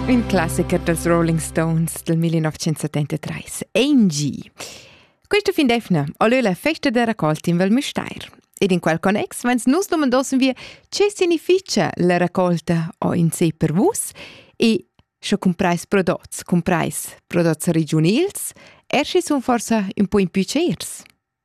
Un classicher dels Rolling Stones del 1973, Angie. Questa fin d'efna olö la festa da raccolta in Val Müstair. Ed in quel connex vens nus domandossen wir ce significia la raccolta o in sé per vus e sche cumprais prodots, cumprais prodots regionils, er schi sun forsa un po in più ceirs.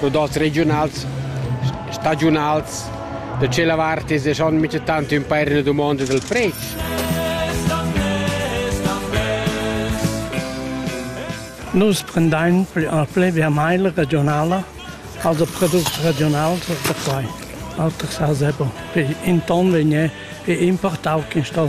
podats regiunals, stagiunals, da tschella vart es e schon mica tant ün pair üna dumonda dal predsch. Nus prendain a ple via mail regionala, also products regionals da quai. Alters ha sebo. In ton vegné e importau quin sto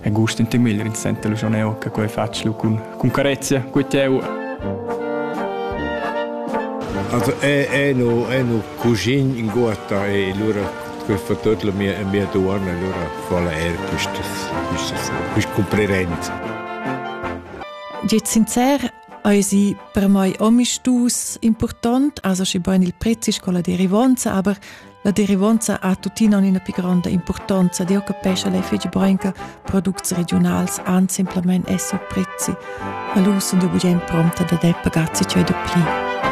e gust in temil rinzenter lu schon eu che quei fatsch lu cun cun carezia cu teu Also è, è, no, è no cugin in guata e allora quel fa tutto la mia, mia duana allora fa la er quistas quistas quist comprerenz Jet sincer Eisi per mai omi stus important, also schi bein il prezis con la derivanza, aber La derivonza ha tuttina ina pli gronda impurtanza, di occupescha lei fece Brenca products regionals an simplamain essi prezzi. A l'us sun de bugen prompta da der pagazzi cei do pli.